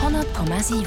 100,7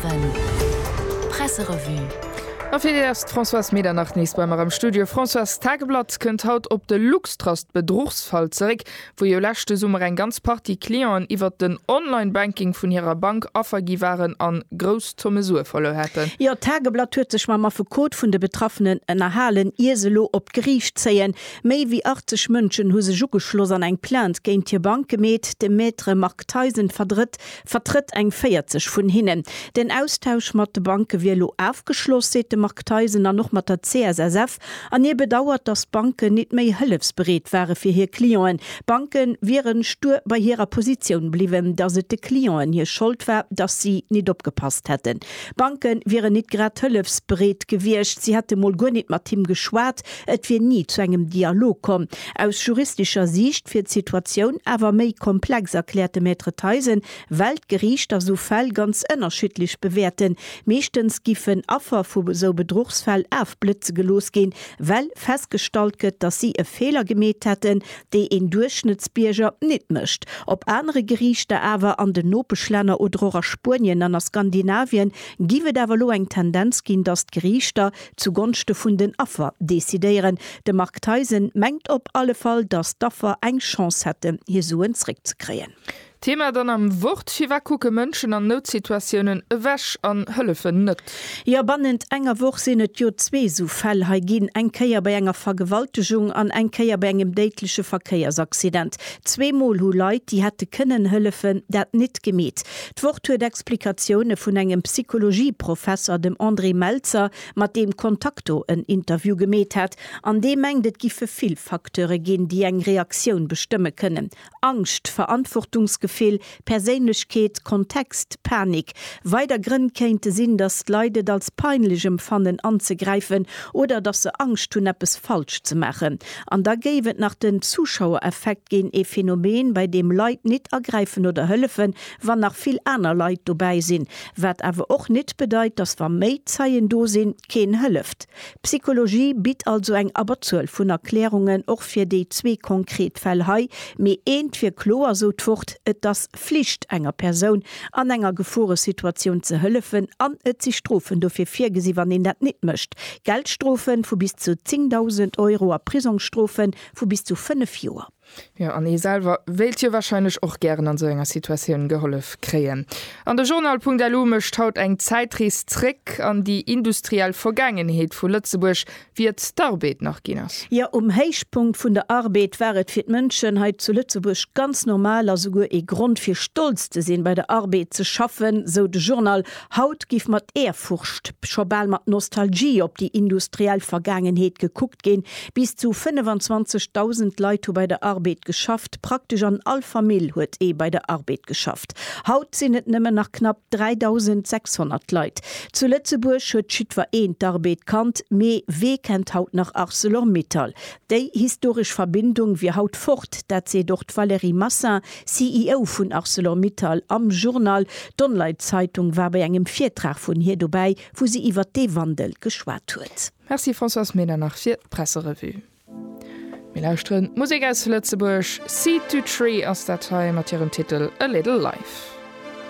Presserevue A fir Dir ass d'Françoise Medernach nees bei mer am Studio. Françoise, d'Tageblatt kënnt haut op de Luxtrust-Bedruchsfall zeréck, wou jo leschte Summer eng ganz Partie Clienten iwwert den Online-Banking vun hirer Bank Affer gi waren a grouss Zomme Sue verluer haten. Jo, d'Tageblatt huet sech mam Affekot vun de Betraffenen ënnerhalen, ier se elo op d'Geriicht zéien. Méi wéi 80 Mënschen hu sech ugeschloss an eng Plainte géint hir Bank gemeet. De Maître Marc. Marc Theisen verdrëtt, vertrëtt eng 40 vun hinnen. Den Austausch mat de Banke wier elo afgeschloss, seet de Marc Theisen, an och mat der CSSF. An hie bedauert, datt d'Banken nit méi hëllefsbereet ware fir hir Clienten. D'Banke wiere stur bei hirer Positioun bliwwen, datt et de Clienten hir Schold war, datt si nit opgepasst hätten. D'Banke wieren nit grad hëllefsbereet gewiescht, si hätte mol guer nit mat him geschwat. Et wier ni zu engem Dialog komm. Aus juristescher Siicht wier d'Situatioun awer méi komplex, erkläert de Maître Theisen, well d'Geriichter sou Fäll ganz ënnerschiddlech bewäerten. Meeschtens giffen Affer vu sou Bedruchsfäll afblëtze gelooss ginn, well festgestallt gëtt, datt si e Feeler gemeet hätten, dee een Duerchschnëttsbierger nit mécht. Op anere Geriichter awer, an den Nopeschlänner oder och a Spuenien an a Skandinavien, giff et awer elo eng Tendenz ginn, datt d'Geriichter zu Gonschte vun den Affer decidéieren. De Marc Theisen mengt op alle Fall, datt d'Affer eng Chance hätten, hir Suen zréckzekréien. Thema dann am Wort, Firwat kucke Mënschen an Noutsituatiounen ewech an hëllefen net? Jo, bannent enger Woch sinn et jo zwee esou Fäll hei ginn, eng Kéier bei enger Vergewaltegung an eng Kéier bei engem déidleche Verkéiersaccident. Zweemol hu Leit, déi hätte kënnen hëllefen, dat nit gemeet. D'Wort huet Explikatioune vun engem Psychologie-Professer, dem André Melzer, mat deem Contacto en Interview gemeet hat, an dee mengt, et giffe vill Facteure ginn, déi eng Reaktioun bestëmme kënnen, Angscht, Verantwortungsgefill, Perséinlechkeet, Kontext, Panik. Weider Grënn kéinte sinn, datt d'Leit et als peinlech emfannen anzegräifen oder datt se Angscht hunn eppes falsch ze maachen. An da géif et nach den Zuschauereffekt ginn, ee Phänomen, bei deem Leit nit agräifen oder hëllefen, wann nach vill aner Leit dobäi sinn, wat awer och nit bedeit, dass wa méi Zeien do sinn, keen hëlleft. D'Psychologie bitt also eng Abberzuel vun Erklärungen och fir déi zwee konkret Fäll hei, mee eent wier kloer, sou d'Wort, Et ass Flicht enger Persoun an enger Geforesituatioun ze hëllefen an et si Strofen dofir virgesi wann een dat nit mécht, Geldstrofe vu bis zu 10.000 Euro a Prisongsstrofe vu bis zu 5 Joer. Jo, an ee selwer wéilt jo warscheinlech och gären an esou enger Situatioun gehollef kréien. An de Journal.lu mécht haut eng Zäitrees zréck an déi industriell Vergaangenheet vu Lëtzebuerg, wéi et d'Arbeed nach ginn ass. Jo, um Héichpunkt vun der Arbeed war et fir d'Mënschen hei zu Lëtzebuerg ganz normal a souguer ee Grond fir stolz ze sinn, bei der Arbeed ze schaffen, sou de Journal Haut giff mat Ehrfurcht, scho bal mat Nostalgie op déi industriell Vergaangenheet gekuckt ginn. Bis zu 25.000 Leit hu bei der Arbed geschafft, praktesch an all Famill huet ee bei der Arbed geschafft. Haut sinn et nëmmen nach knapp 3.600 Leit. Zu Lëtzebuerg huet jiddwer een d'Arbed kannt, mee wee kennt haut nach Arcelor-Mittal? Déi historesch Verbindung wier haut fort, dat seet och d'Valérie Massin, CEO vun Arcelor-Mittal, am Journal. D'Onlite Zeitung war bei engem Virtrag vun hir dobäi, wou si iwwert dee Wandel geschwat huet. Merci Françoise Ménard nach fir d'Presserevue. Mir lauschteren Musek aus Lëtzebuerg, Seed To Tree ass dat hei mat hirem Titel A Little Life.